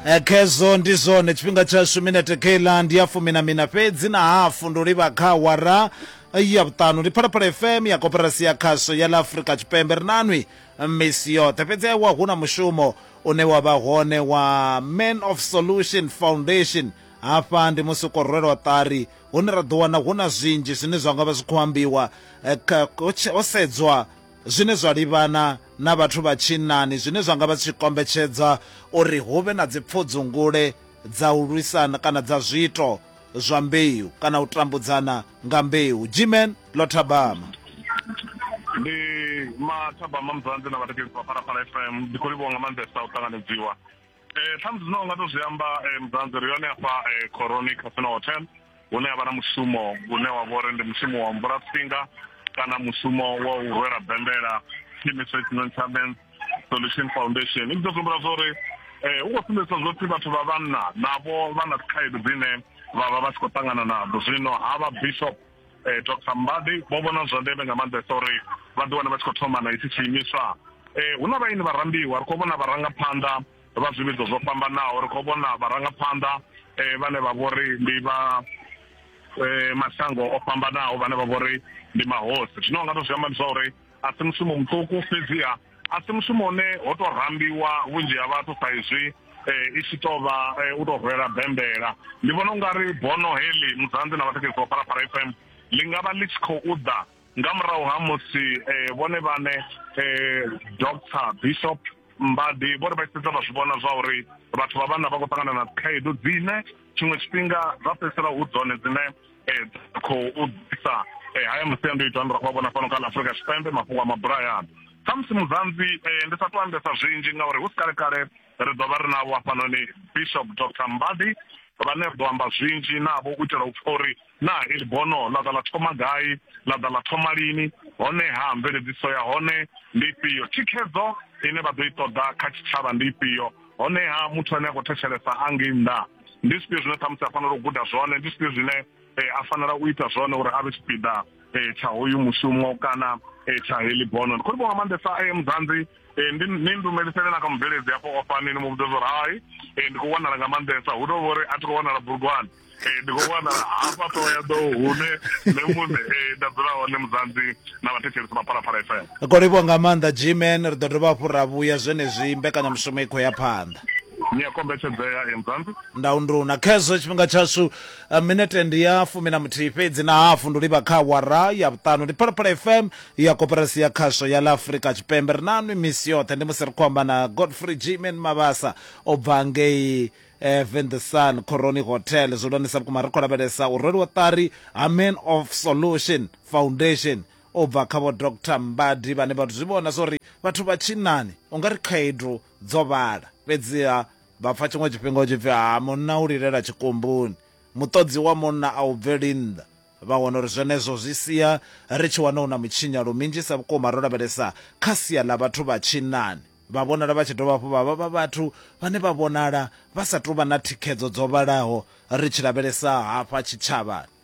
Eh, khezwo ndi zwone tshifhinga tshashu minete keiḽa ndi ya fumi na mina fhedzi na hafu ndo livha kha awara ya vhuṱanu ndi phalaphala fm ya koperasi ya khasho ya ḽa afurika tshipembe ri nanwi misi yoṱhe fhedzi ewa hu na mushumo une wa vha hone wa man of solution foundation hafha ndi musi u khou rwelwa ṱari hune ra ḓo wana hu na zwinzhi zwine zwa nga vha zwi khou ambiwa eh, kha- ho tshe- ho sedzwa zwine zwa livhana na vhathu vha tshinnani zwine zwa nga vha zwi tshi kombetshedza uri hu vhe na dzipfudzungule dza u lwisana kana dza zwiito zwa mbeu kana u tambudzana nga mbeu. Gmen ḽo thabama. ndi mathabama muzanzi na vhatekesi vha phalaphala fm ndi khou livhuwa nga maanḓesa u ṱanganedziwa Ṱhamusi zwine wa nga to zwi amba Mudzanzi ri hone hafha Khoroni Casino Hotel hune havha na mushumo une wa vha uri ndi mushumo wa mvula tsinga kana mushumo wa u rwela bembela tshiimiswa tshi no tsha Men's Solution Foundation ndi ḓo humbula zwa uri hu khou sumbedzisa zwa uri vhathu vha vhanna navho vha na khaedu dzine vha vha vha tshi khou ṱangana nadzo zwino ha vha bishop eh, dr mbadi vho vhona zwa ndeme nga maanḓesa uri vha ḓi wane vha tshi khou thoma na itshi tshiimiswa eh, hu na vhaini vharambiwa ri khou vhona vharangaphanḓa vha zwivhidzo zwo fhambanaho ri khou vhona vharangaphanḓa eh, vhane vha vho ri ndi vha eh, mashango o fhambanaho vhane vha vho ri ndi mahosi zwino nga to zwi amba ndi zwa uri a si mushumo muṱuku fhedziha a si mushumo une ho tou rambiwa vhunzhi ha vhathu sa izwi eh, i tshi tou vha eh, u tou rwela bembela ndi vhona u nga ri bono heḽi mudzanzi na vhathekedzisi vha phalaphala f m ḽi nga vha ḽi tshi khou ḓa nga murahu ha musi eh, vhone vhane doctor bishop mbadi vhori vha tshifhedza vha zwi vhona zwa uri vhathu vha vhanna vha khou ṱangana na dzikhaedu dzine tshiṅwe tshifhinga dza fhedzisela hu dzone dzine khou ḓisa haya masiandoitwa ane ra khou a vhona fhano kha ḽa afurika tshipembe mafhungo a maburayaano khamusi muzanzi ndi sa to ambesa zwinzhi ngauri hu si kale kale ri ḓo vha ri navho hafhanoni bishop dr mbadi vhane ri ḓo amba zwinzhi navho u itela u pfa uri na ili bono ḽa ḓa ḽa thoma gai ḽa ḓa ḽa thoma lini honeha mveledziso ya hone ndi ifhio thikhedzo ine vha ḓo i ṱoḓa kha tshitshavha ndi ifhio honeha muthu ane a khou thetshelesa a ngei nnḓa ndi zwifhio zwine ṱhamusi a fanela u guda zwone ndi zwifhio zwine eh, a fanela u ita zwone uri a vhe tshipiḓa eh, tsha hoyu mushumo kana eh, tsha heḽi bono ndi khou livha nga maanḓesa eh, mudzanzi eh, ndi ni ndumelisele na kha mubveledzi hafho ofani ni mu vhudza zwo ri hai eh, ndi khou wanala nga maanḓesa hu tou vha uri a thi khou wanala burugwane eh, ndi khou wanala hafha ṱoho ya ḓoho hune nṋe muṋe eh, nda dzula hone mudzanzi na vhathetshelesi vha phalaphala fm ri livhuwa nga maanḓa gman ri ḓo dovha hafhu ra vhuya zwenezwi mbekanyamushumo i khou ya phanḓa ni a kombetshedzea emzanzi ndaunduna khezwo tshifhinga tshashu eh, minete ndi ya fumi na muthihi fhedzi na hafu ndi livha kha wara ya vhuṱanu ndi phalaphala fm ya koperasi ya khasho ya ḽa afurika tshipembe ri nanwi misi yoṱhe ndi musi ri khou amba na godfrey gman mabasa o bva ngei eh, vendesan coroni hotel zwi hulwanisa vhukuma ri khou lavhelesa u rweliwa ṱari ha man of solution Foundation u bva kha Vho Doctor Mbadi vhane vha zwi vhona zwa uri vhathu vha tshinnani u nga ri khaedu dzo vhala fhedziha vha pfa tshiṅwe tshifhinga hu tshi pfi ha munna u lilela tshikumbuni, muṱodzi wa munna a u bveli nnḓa. Vha wana uri zwenezwo zwi sia ri tshi wana hu na mutshinyalo minzhisa vhukuma ro lavhelesa kha sia ḽa vhathu vha tshinnani. Vha vhonala vha tshi dovha hafhu vha vha vha vhathu vhane vha vhonala vha sa tou vha na thikhedzo dzo vhalaho ri tshi lavhelesa hafha tshitshavhani.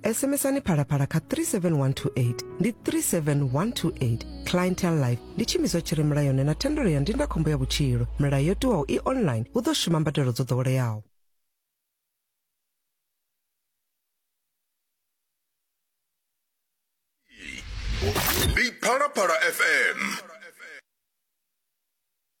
SMSani phalaphala kha 37128 ndi 37128 clientele life ndi tshiimiswa tshi re mulayoni na thendelo ya ndindakhombo ya vhutshilo milayo yo tiwaho i online hu ḓo shuma mbadelo dzo ḓoweleaho Big Phala Phala FM